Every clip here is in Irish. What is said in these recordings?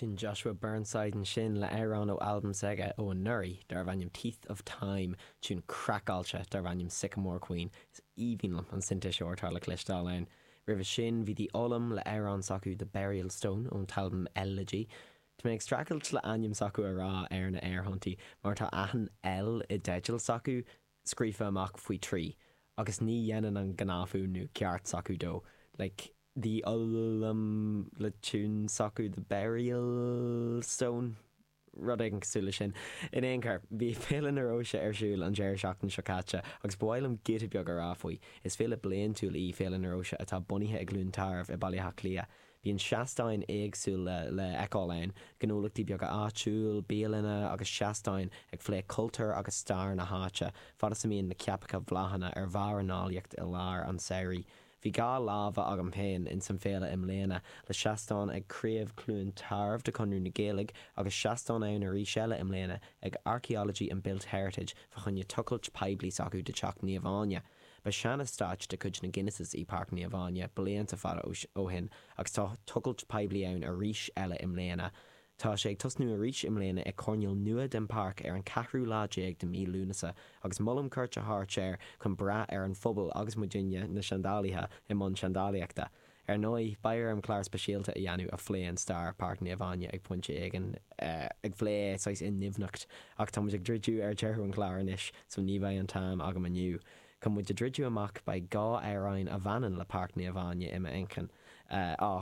Sin Joshua Burnside ansin le amhrán ó albam s'aige ó anuraidh darbh ainm Teeth of Time, tiún craiceáilte darbh ainm Sycamore Queen. Is aoibhinn liom an sintéiseoir atá le cloisteáil ann. Roimhe sin bhí The Olllam le amhrán s'acu The Burialll Stone ón t-albam Elllegy. Tá mé ag streachailt le ainm s'acu a rá ar na aerthonntaí mar tá achan L i dteidil s'acu scríofa amach faoi thrí agus ní dhéanann an gnáthfhuaimniú ceart s'acu dó, like the ul-lul-lum le tiún s'acu the burial stone, rud éigin cosúil le sin. In aon chor, bhí Féile na Róise ar siúl an deireadh seachtaine seo caite agus ba mhaith liom giota beag a rá faoi. Is féile bliantúil í Féile na Róise atá bunaithe i gCluain Tarbh i Baile Átha Cliath. Bíonn seastáin éagsúla le fheiceáil ann, gnólachtaí beaga áitiúil, bialanna agus seastáin ag phlé cultúr agus stair na háite, fad is a mbíonn na ceapacha bláthanna ar bharr a n-áilleacht i lár an tsamhraidh. Bhí dhá láimhe agam féin ins an bhféile i mbliana, le seastán ag Craobh Chluain Tarbh de Chonradh na Gaeilge agus seastán ann arís eile i mbliana ag Archaeology and Built Heritage fá choinne tochailt poiblí s'acu de Teach Naomh Áine. Ba sean-eastáit de chuid na Guinnesses í Páirc Naomh Áine blianta fada ó shin agus tá tochailt poiblí ann arís eile i mbliana. Tá sé ag tosnú arís i mbliana ag coirnéal nua den pháirc ar an ceathrú lá déag de mhí Lúnasa agus molaim cuairt a thabhairt air chun breith ar an phobal agus muidinne na seandálaithe i mbun seandálaíochta. Ar ndóigh, beidh orm clár speisialta a dhéanamh a phléann stair Páirc Naomh Áine ag pointe éigin, ag phlé saghas i ndoimhneacht, ach tá muid ag druidiú ar deireadh an chláir anois, so ní bheidh an t-am agam inniu. Chun muid a druidiú amach, beidh dhá amhráin a bhaineann le Páirc Naomh Áine i m'inchinn, á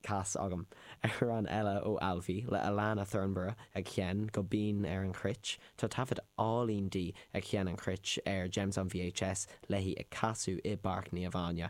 chas agam. Amhrán eile ó Alfi, le Alannah Thornburgh, ag sheinn go binn ar an chruit. Tá taifead álainn di ag sheinn an chruit ar Gems on VHS, léi ag casadh i bPáirc Naomh Áine.